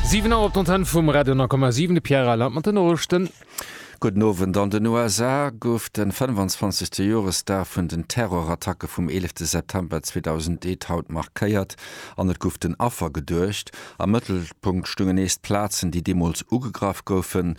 Siwen Auer op d'Antenne vum Radio 10,7. De Pierre Reyland mat den Noriichten. Gudden Owend. An den USA gouf de 25. Joresdag vun den Terrorattacke vum 11 de September 2001 haut markéiert an et gouf den Affer geduecht. Am Mëttelpunkt stungen nees d'Plazen, déi deemools ugegraff goufen.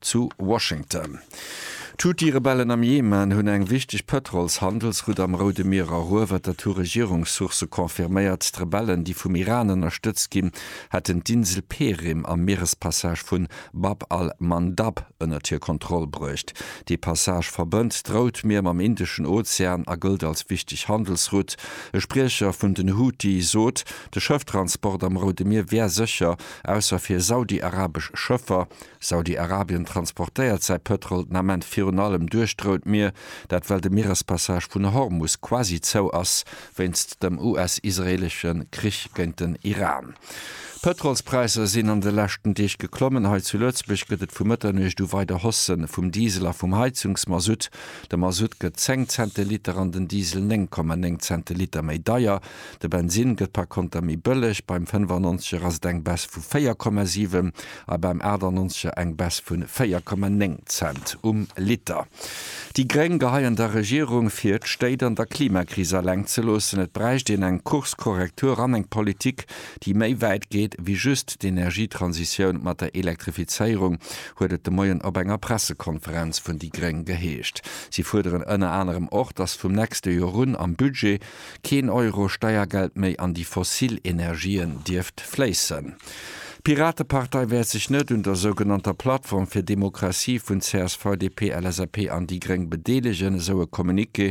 Zu Washington. D'Houthi-Rebellen am Jemen hunn eng wichteg Pëtrols-Handelsroute am Roude Mier eruewert, dat hu Regierungssourcë confirméiert. D'Rebellen, déi vum Iran ënnerstëtzt ginn, hätten d'Insel Perim am Mierespassage vun Bab al-Mandab ënnert hir Kontroll bruecht. Dee Passage verbënnt d'Rout Mier mam Indeschen Ozean a gëllt als wichteg Handelsroute. E Spriecher vun den Houthi sot, de Schëfftransport am Roude Mier wär sécher, ausser fir saudi-arabesch Schëffer. Saudi-Arabien transportéiert säi Pëtrol den Ament virun allem duerch d'Rout Mier, dat well de Mierespassage vun Hormus quasi zou ass wéinst dem US-israeelesche Krich géint den Iran. D'Pëtrolspräisser sinn an de leschten Deeg geklommen. Hei zu Lëtzebuerg gëtt et vu Mëtternuecht u weider Hausse vum Diesel a vum Heizungsmasutt. De Masutt gëtt 10 Cent de Liter an den Diesel 9,9 Cent de Liter méi deier. De Bensinn gëtt par Konter méi bëlleg, beim 95 er ass et eng Baisse vu 4,7 a beim 98er eng Baisse vu 4,9 Cent um Liter. Déi Gréng geheien der Regierung vir, d'Stéit an der Klimakris eleng ze loossen. Et bräicht een eng Kurskorrektur an eng Politik, déi méi wäit geet wéi just d'Energietransitioun mat der Elektrifizéierung, huet et de Moien op enger Pressekonferenz vun déi Gréng geheescht. Si fuerderen ënner anerem och, datt vum nächste Joer un am Budget keen Euro Steiergeld méi an déi fossil Energien dierft fléissen. D'Piratepartei wäert sech net un der sougenannter Plattform fir Demokratie vun csv, DP, LSAP an déi Gréng bedeelegen, esou e Communiqué.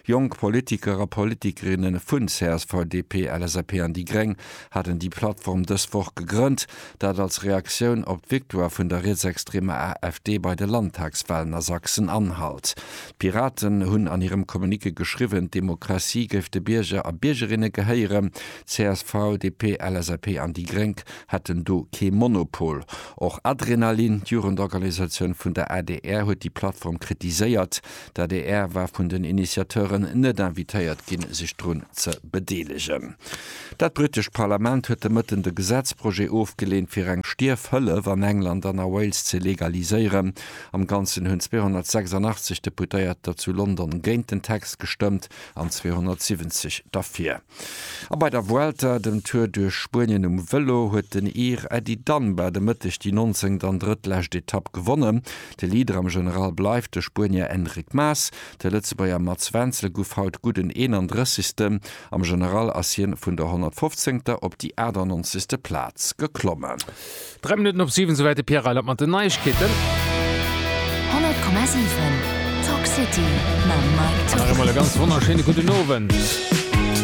Jonk Politiker a Politikerinne vun csv, DP, LSAP an déi Gréng haten déi Plattform dës Woch gegrënnt. Dat als Reaktioun op d'Victoire vun der rietsextremer AfD bei de Landtagswalen a Sachsen-Anhalt. D'Piraten hunn an hirem Communiqué geschriwwen, d'Demokratie géif de Bierger a Biergerinne gehéieren. csv, DP, LSAP an déi Gréng hätten do kee Monopol. Och Adrenalin, d'Jugendorganisatioun vun der adr, huet déi Plattform kritiséiert. D'adr war vun den Initiateuren net invitéiert ginn, sech drun ze bedeelegen. Dat britescht Parlament huet de Mëtten de Gesetzprojet ofgeleent, fir eng Stierfhëllef an England an a Wales ze legaliséieren. Am Ganzen hunn 286 Deputéiert der zu London géint den Text gestëmmt an 270 derfir. A bei der Vuelta, dem Tour duerch Spuenien um Vëlo, huet den Ir Eddie Dunbar de Mëtteg déi nonzéngt an drëttlescht Etapp gewonnen. De Leader am General bleift de Spuenier Enric Mas. De Lëtzebuerger Mats Wenzel guff haut gudden 31. Am General ass hien vun der 115. op déi 98. Plaz geklommen. Dräi Minutten op siwen, souwäit de Pierre Reyland mat den Neiegkeeten. 100,7 Talk City mam Mike Thorsen. Nach eemol e ganz wonnerschéine gudden Owend.